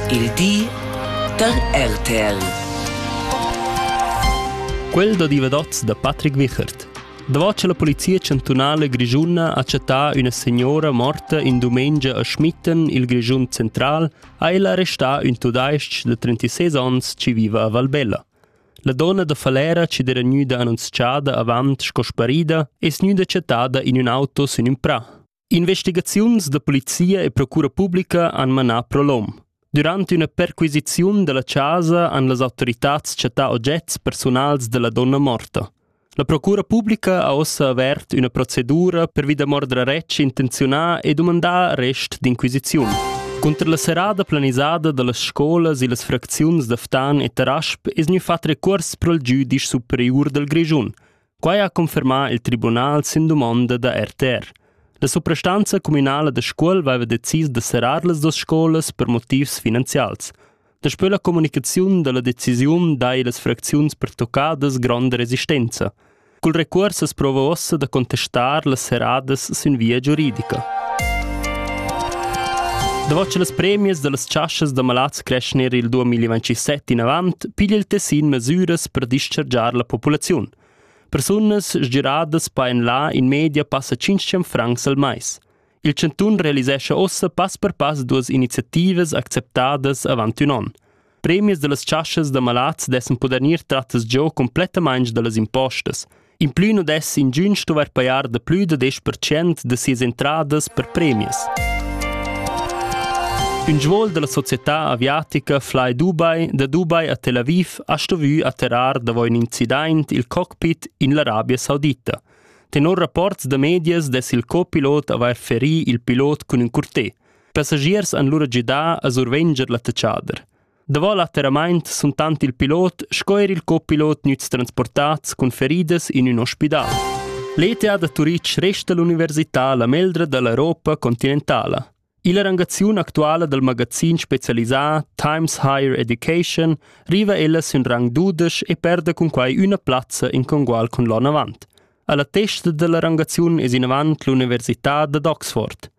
Il di da RTL. Quel da divadats da Patrick Wichert. Davart che la polizia chantunala grischuna ha chattà üna signora morta in dumengia a Schmitten, il Grischun central, ha ella arrestà ün tudais-ch da 36 ans chi viva a Valbella. La donna da Falera chi d'era gnüda annunzchada avant sco sparida es gnüda chattada in ün auto sün ün prà. Investigaziuns da polizia e procura publica han manà prolom. Durant üna perquisiziun dalla casa han las autoritads chattà ogets persunals della donna morta. La procura publica ha ossa avert üna procedura per vi da mordra retsch intenziunà e dumandà arrest d'inquisiziun. Cunter la serada planisada dallas scolas e las fracziuns da Ftan e Tarasp es gnü fat recurs pro il giudice superiur dal Grischun – Quai ha confermà il tribunal sin dumonda da RTR. La suprastanza communala da Scuol aveva decis da serrar las duas scolas per motivs finanzials. Daspö la comunicaziun da la decisiun dai las fracziuns pertoccadas gronda resistenza. Cul recuors as prova uossa da contestar las serradas sün via giuridica. Davant las premias da las chaschas da malads cresch ner il 2027 inavant pigl il tessin mesüras per dischargiar la populaziun. Persunas sgiradas paen là in media passa 500 francs al mais. Il Cantun realisescha ossa pass per pass duas iniziativas acceptadas avant un an. Premies da las chaschas da malats dessen poder gnir trattas giò complettamaing da las impostas – In plü nu dess ingün stuvair pajar da plü da desch percent da sias entradas per premias. Ün svuol da la società aviatica Fly Dubai da Dubai a Tel Aviv ha stuvü atterrar davo ün incident il cockpit in l'Arabia Saudita. Tenor rapports da medias dess il copilot avair ferì il pilot cun ün curté. Passagiers han lura gidà a survenger l'attacchader. Davo l'atterramaint sun tant il pilot sco eir il copilot gnüts transportats cun feridas in ün ospidal. L'ETA da Turitg resta l'università la meldra da l'Europa continentala. Illa rangaziun actuala dal magazin specialisà Times Higher Education riva ella sün rang dudesch e perda cun quai üna plazza in congual cun l'on avant. A la testa da la rangaziun es inavant l'università dad Oxford.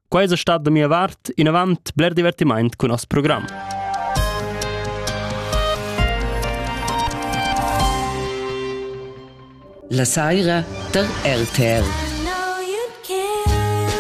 Quai es stat da mia vart inavant bler divertimaint cun nos program. La saira da RTL.